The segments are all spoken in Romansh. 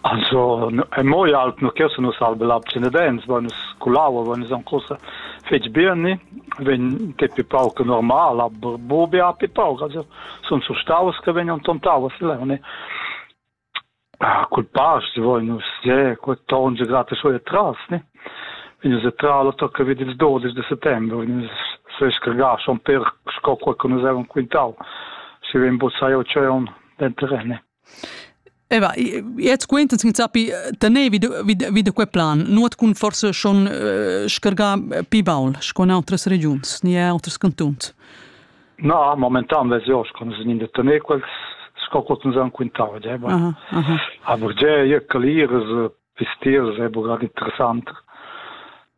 Also mo i alp nu chesa nus alba lab Cenedens, vain nus culaua, vain nus ancora fetg beni, vegn depi pauc normal, a bubi a pi pauc, also sun surstaus che vegnan tontau a Silerne. Ah, cul past voi nus je, quel tonge grata suoia tras, ne? Vegn se tra lo tocca vid ils 12 de settembre, vegn se scargà schon per sco quel che nus avevamo quintau, si vem buzzai o c'è un den terrene. Eh bah, jetzt quintas chi sappi tener vi da, vi da, vi da quel plan, nuot cun forsa schon eh, scargà pi baul sco in outras regiuns, ni outers cantuns. Na, momentan vez io sco nus in da tener quels sco quot nus han quintau, eh, bah. Aha, aha. Aber je, je, caliras, pistiers è bugar interessant.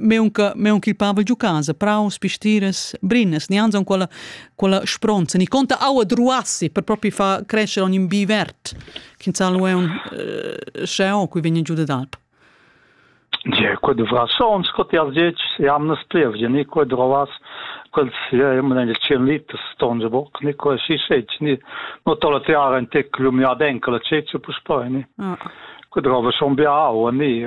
meunca meunca il Pavel giu casa praus pistiras brinas ni anzon quella quella spronza ni conta aua druassi per propri fa crescere ogni bi vert che salu è un sceo cui vegna giù d'alp Je, quod vas on scot ja zec jam nas plevje, ni quod rovas quels ja immer eine 10 Liter stonge bock, ni quel si sec, ni no tola tiara in tec lumia denka la ceccia pus poi, ni. Ah. Quod rova son bia aua, ni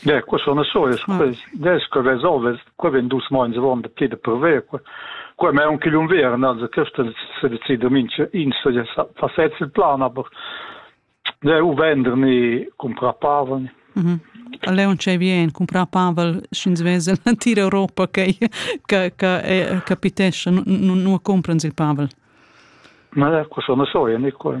Gie, qua sun e solis quels dels che resolvas. Qua vegn dus meins avon da ti da purver. Qua qua è aunc igl unviern, also questo se decide mincha ins fa sez il plan, aber de u venderni cumprar paven. Mhm. A Leon c'è bien cumprar pavel sch'ins vesel en tira Europa che che che capitesce non compran il pavel. Ma qua sono soia, ni qua.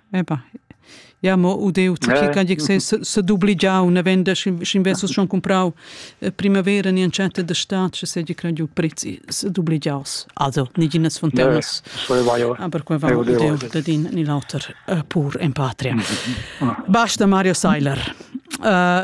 Eba, ja mo udeu, che can dic se se dubligiau, ne venda sc'in versus schon comprau primavera ni antschetta da stat, che se dic giu prezzi se dubligiaus. Also, niginas fontanas. Aber qua va udeu da din ni l'auter pur en patria. Basta Mario Seiler. Uh,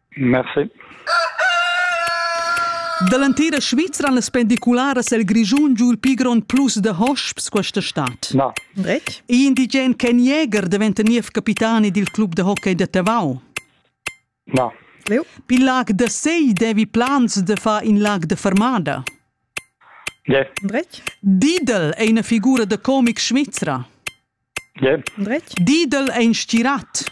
Merci. Dall'entira Svizra han las pendicularas el Grischun giu il pli grond plus da hosps questa stad. Na. Brec? I indigen Ken Jäger daventa niev capitani dil club da hockey da Tavau. Na. Leu? Pil lag da Sei devi plans da far in lag da fermada. Yeah. Brec? Didel è una figura da comic svizra. Yeah. Brec? Didel è in stirat.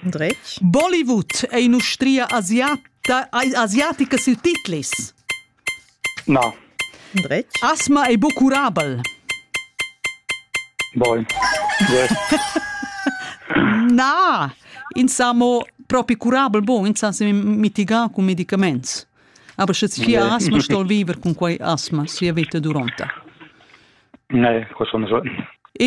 Dretg. Bollywood è in'ustria asiata, asiatica sil Tiflis. Na. Dretg. Asma ei bucurabel. Boy. Na, ins sa mo propi curabel bon, ins sa mitigar con medicaments. Aber sche sia asma stol viver con quei asma sia vita duranta. Ne, questo non so.